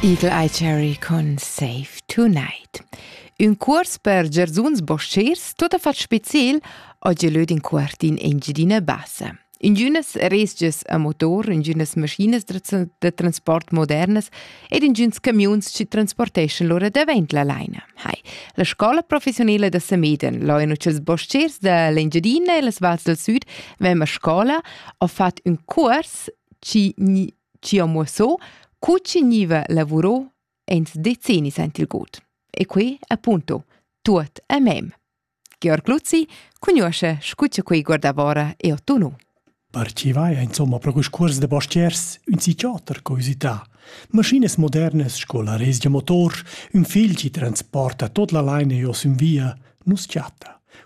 Igl ei cherry con Save Tonight. Ün cuors per gerzuns boschiers, tot a fat speciel, oggi löd in quart in Engiadina Bassa. Ingünas resgias a motor, ingünas maschinas da transport modernas ed ingüns camiuns ci transporteschan lura davent la laina. Hai, la scola professionela da Sameden, loino ch'ils boschiers da l'Engiadina e las vals del sud vem a scola, ho fat ün cuors chi gni chi ho muossò cu chi gniva lavurò ins decennis aint il god. E quei appunto tuot a mem. Georg Luzzi cugnuoscha scu cha quei guardavora e ottuno. Parcivai insomma pro quist cuors da pastiers ün psichiater curiosità. Maschinas modernas sco la res da motor, ün fil chi transporta tot la laina jo sün via, nus chatta.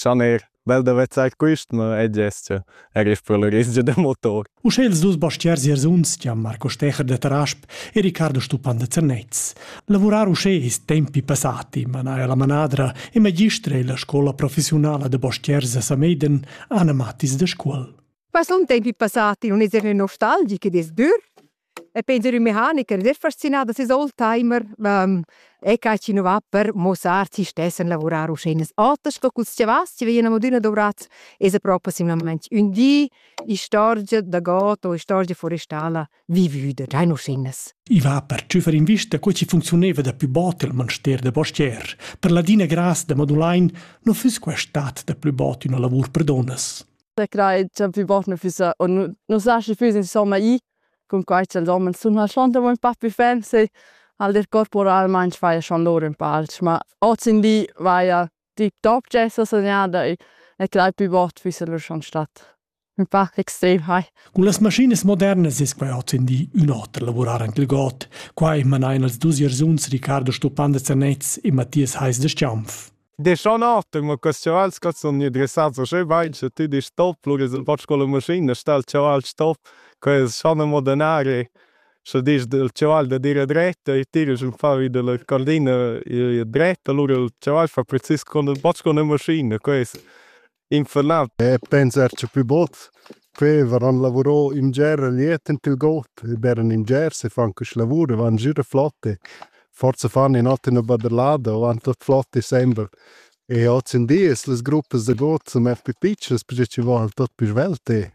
Schaner, bel da vezzar quist, ma e gest er isch per l'orizia da motor. Uschè ils dus bastiers Jersuns, Gian Marco Stecher de Tarasp e Riccardo Stupan de Zernez. Lavurar uschè ist tempi passati, manaja la manadra e magistra e la scola professionala de bastiers a Sameiden, Anna Mattis de Scuol. Was un tempi passati, un eser nostalgic ed es dür? E Peter, ün mecanicher, sehr faszinà da seis old timer. E ca chi nu va per muossar chi stess a lavurar uschè. Oter sco culs chiavas chi vegnan adüna dovrats, esa propi simlamaing ün di istorgia da god o istorgia forestala vivüda, già in uschinas. I va per tschüfar invista co chi funcziunaiva da pü bod il manster da postier. Per ladina gras da Madulain nu füss quai stat da plü bod üna lavur per donnas. Sä crai cha plü bot nu füssa o nu nu saschi füss insomma i cun quai cha'ls homens sun lasciond amo ün pa pü ferm se al ir corporalmaing faja schon lur ün pa alch, ma hoz in li vaja tip top d'esser segnada e e crai plü bot füssa lur schon stat ün pa extrem hai. Cun las maschinas modernas es quai hoz in di ün oter lavurar anche il god. Quai manain els dus iersuns Riccardo Stupan da Zernez e Mathias Heis da Schiaunf. Deschan atem ma quest chaval sco sun gnü dressats uschè bain cha tü disch stop, lura es ün poch sco la maschina, sta il chaval stop, quai es schon amo denari. Scha disch dal chaval da dire dret e tira sün fa vi da la cordina dret, alura il chaval fa precis cun ün poch cun la maschina, quai es infernal. E pensar c'è più bot. Quei varan lavurò in ger liet in til got, e beran in ger se fan quest lavur, van gira flotte. Forza fan in ot in baderlada, van tot flotte sembra. E oz in dies las gruppas de got sun mer più piccias, perché ci vol tot più svelte.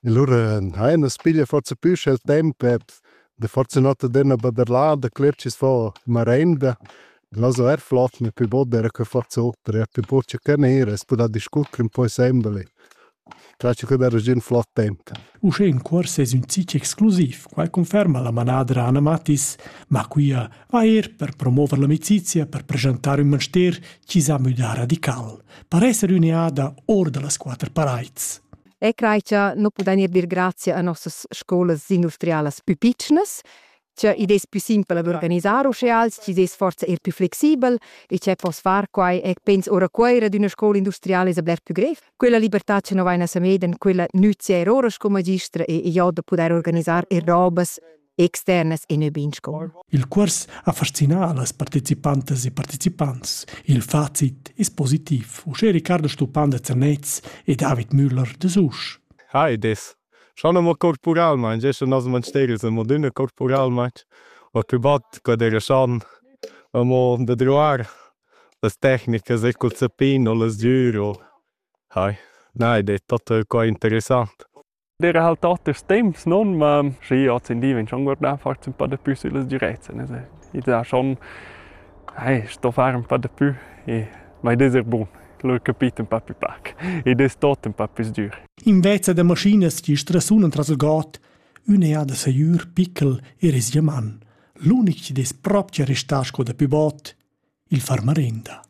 E lura hai una spiglia forza più il tempo, e de forza notte dena baderlada, cler ci fa marenda. Glaso er flot ne pü bod era que fat soper, er pü buccia che nera, es pudà discurrer ün po sembel e clache che darà già ün flot temp. Uschè in cuors es ün zich exclusiv, quai conferma la manadra Anna Mattis, ma quia va eir per promover l'amicizia per preschantar ün manster chi s'ha müdà radical, per esser üneada or da las quatter paraids. E crai cha nu pudain eir dir grazia a nossas scolas industrialas pü pitschnas, Tgeu id es plü simpel ad organisar uschè als chi's es forsa eir plü flexibel e che poss far quai ec pens ora Cuoira d'üna scoula industriala es a bler plü grev. Quella libertà cha no vaina Samedan, quella nüzia eir ora sco magistra e e jo da pudair organisar eir robas externas e nö be in scoula. Il cuors ha fascinà las partecipantas e partecipants. Il facit es positiv, uschè Riccardo Stupan da Zernez e David Müller da Susch. Hi, id es Schon amo corporalmaing, gest nos mansteri sun adüna corporalmaing, ho pü bod que d'eira schon amo da druar las tecnicas e cul zappin o las dür o hai. Na, id es tot qua interessant. D'eira halt oters temps, non? Ma schi, ozendi vegn schon guardà forsa ün pa da pü süllas direzzen. Es id ha schon, ai, sto far ün pa da pü e ma id es er bun. Lur capit ün pa pü pac. Id es tot ün pa pü sdür. Invece da maschinas chi strasunan tras il god, ün eau da sajür pickel ir es sia man. L'unic chi'd es propcha restà sco dapü bod, il far marinda.